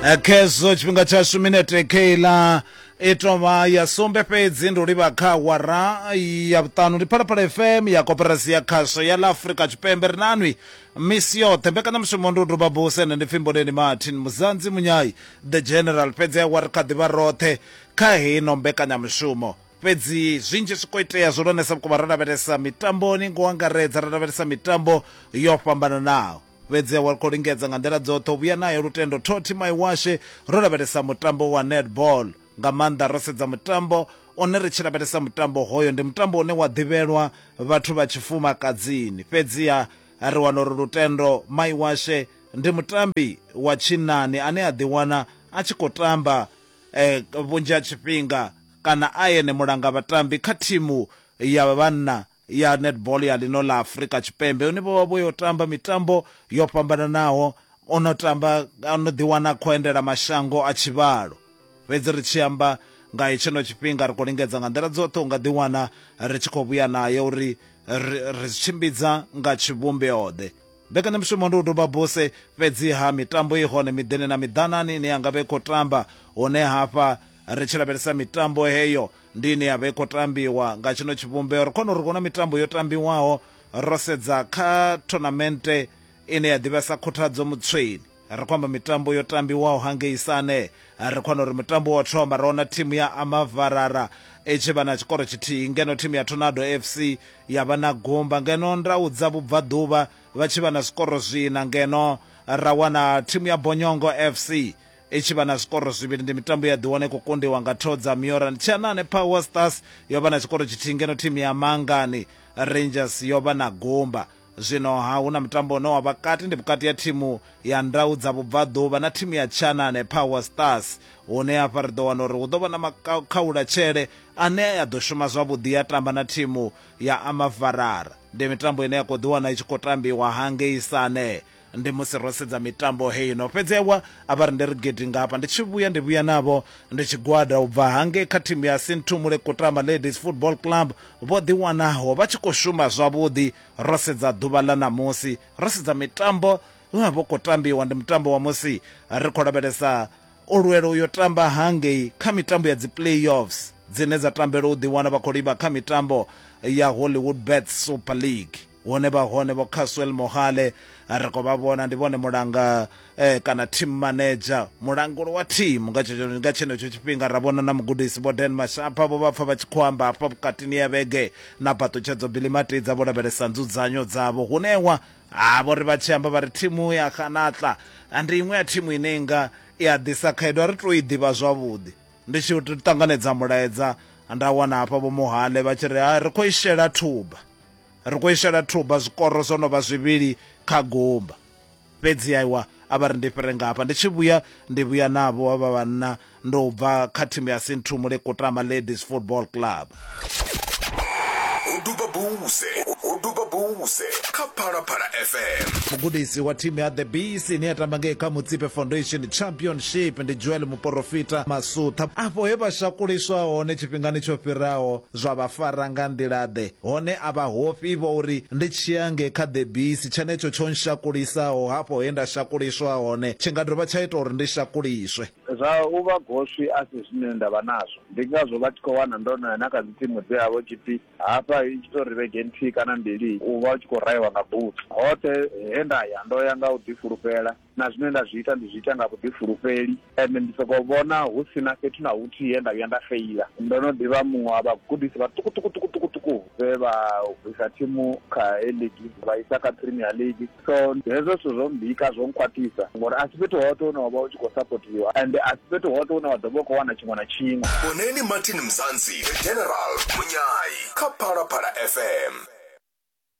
Eh, khezwo tshifhinga tshashu minete keiḽa i tovha ya sumbe fhedzi ndi u livha kha wara ya vhuṱanu ndi phalaphala fm ya koperasi ya khasho ya ḽa afurika tshipembe ri nanwi misi yoṱhe mbekanyamushumo ndi u duba buse ende ndi pfimboleni martin muzanzi munyai the general fhedzi awa ri kha ḓivha roṱhe kha heino mbekanyamushumo fhedzi zwinzhi zwi khou itea zwihulwanesa vhukuma ro lavhelesa mitamboni ngo angaredza ro lavhelesa mitambo yo fhambananaho Fhedzi wa khou lingedza nga nḓila dzoṱhe u vhuya nayo lutendo. Toti Maiwashe, Ro lavhelesa mutambo wa netball nga maanḓa ro sedza mutambo one ri tshi lavhelesa mutambo hoyo ndi mutambo une wa ḓivhelwa vhathu vha tshifumakadzini fhedziha ri wana uri lutendo Maiwashe ndi mutambi wa tshinnani ane a ḓiwana a tshi khou tamba eh, vhunzhi ha tshifhinga kana a ene mulanga vhatambi kha thimu ya vhanna ya netball ya ḽino ḽa Afrika Tshipembe une vho vha vho yo tamba mitambo yo fhambananaho o no tamba o no ḓiwana khou endela mashango a tshivhalo fhedzi ri tshi amba nga hetshino tshifhinga ri khou lingedza nga nḓila dzoṱhe u nga ḓiwana ri tshi khou vhuya nayo uri ri tshimbidza nga tshivhumbeoḓe mbekanyamushumo ndi u duba buse fhedziha mitambo i hone miḓini na miḓanani ine ya nga vha i khou tamba hune hafha ri tshi lavhelesa mitambo heyo Ndi ine ya vha i khou tambiwa nga tshino tshivhumbeo. Ri kona uri huna mitambo yo tambiwaho ro sedza kha thonamente ine ya ḓivhea sa Khuthadzo Mutsweni. Ri khou amba mitambo yo tambiwaho hangei Sane. Ri khou wana uri mutambo wa u thoma ro wana thimu ya Amavarara i tshi vha na tshikoro tshithihi ngeno thimu ya Tornado FC ya vha na gumba, ngeno Ndau dza Vhubvaḓuvha vha tshi vha na zwikoro zwiṋa ngeno ra wana thimu ya Bonyongo FC I tshi vha na zwikoro zwivhili, ndi mitambo ye ya ḓiwana i khou kundiwa nga thoo dza Mioran. Tshianane Power Stars yo vha na tshikoro tshithihi ngeno thimu ya Mangani Rangers yo vha na gumba. Zwino-ha hu na mutambo une wa vha kati ndi vhukati ha thimu ya Ndau dza Vhubvaḓuvha na thimu ya Tshianane Power Stars hune hafha ri ḓo wana uri hu ḓo vha na makhaulatshele ane a ḓo shuma zwavhuḓi ya tamba na thimu ya Amavarara. Ndi mitambo ine ya khou ḓiwana i tshi khou tambiwa hangei Sane. Ndi musi ro sedza mitambo heino. Fhedzi ewa, a vha rindele gidi nga hafha. Ndi tshi vhuya, ndi vhuya navho ndi tshigwada u bva hangei kha thimu ya Sinthumule Kutama Ladies Football Club, vho ḓiwanaho vha tshi khou shuma zwavhuḓi. Ro sedza ḓuvha ḽa ṋamusi, ro sedza mitambo ye ya vha i khou tambiwa. Ndi mutambo wa musi ri khou lavhelesa u lwela u yo tamba hangei kha mitambo ya dzi-playoffs dzine dza tambelwa u ḓiwana vha khou livha kha mitambo ya Hollywoodbets Super League. Hune vha hone Vho Caswell Mohale ri khou vha vhona ndi vhone mulanga eh, kana team manager mulanguli wa team nga tshetsho- nga tshenetsho tshifhinga ra vhona na mugudisi Vho Dan Mashapa vho vha pfa vha tshi khou amba hafha vhukatini ya vhege na Phaṱutshedzo Billy Matidza vho lavhelesa nzudzanyo dzavho hunewa ha vho ri vha tshi amba vha ri thimu ya Khanatla ah, ndi iṅwe ya thimu ine nga i a ḓisa khaedu a ri tou i ḓivha zwavhuḓi ndi tshi ṱanganedza mulaedza nda wana hafha vho Mohale vha tshi ri "Ah, ri khou i shela thuba Ri khou i shela thuba zwikoro zwo no vha zwivhili kha gumba. Fhedzi aiwa, a vha ri ndi fhire nga hafha. Ndi tshi vhuya, ndi vhuya navho havha vhanna ndo bva kha thimu ya Sinthumule Kutama Ladies Football Club. Ho duba buse, ho duba buse kha Phalaphala FM. Mugudisi wa thimu ya The Bees ine ya tamba ngei kha Mutsipe Foundation Championship ndi Joel Muporofita Masutha. Afho he vha shakuliswa hone tshifhingani tsho fhiraho, Zwa vha fara nga nḓila-ḓe? Hone a vha hofhi vho uri ndi tshia nge kha ḓebisi, tshenetsho tsho nshakulisaho hafho he nda shakuliswa hone tshi nga dovha tsha ita uri ndi shakuliswe. Zwa u vha goswi a si zwine nda vha nazwo. Ndi ngazwo vha tshi khou wana ndo no ya na kha dzitsimu dze ha vha hu tshi pfi hafha i tshi tou ri vhege nthihi kana mbili u vha u tshi khou rahiwa nga butsu. Hoṱhe he nda ya ndo ya nga u ḓifulufhela. na zwine nda zwi ita ndi zwi ita nga vhuḓifulufheli ende ndi sokou vhona hu si na fhethu na huthihi he nda vhuya nda feila. Ndo no ḓi vha muṅwe wa vhagudisi vhaṱukuṱukuṱukuṱuku vhe vha bvisa thimu kha A-League vha isa kha Premier League, so hezwo zwithu zwo mmbika, zwo nkhwaṱhisa ngori a si fhethu hoṱhe hune wa vha u tshi khou sapothiwa ende a si fhethu hoṱhe hune wa ḓo vha u khou wana tshiṅwe na tshiṅwe. Vhoneni Martin Mzansi, The General, Munyai kha Phalaphala FM.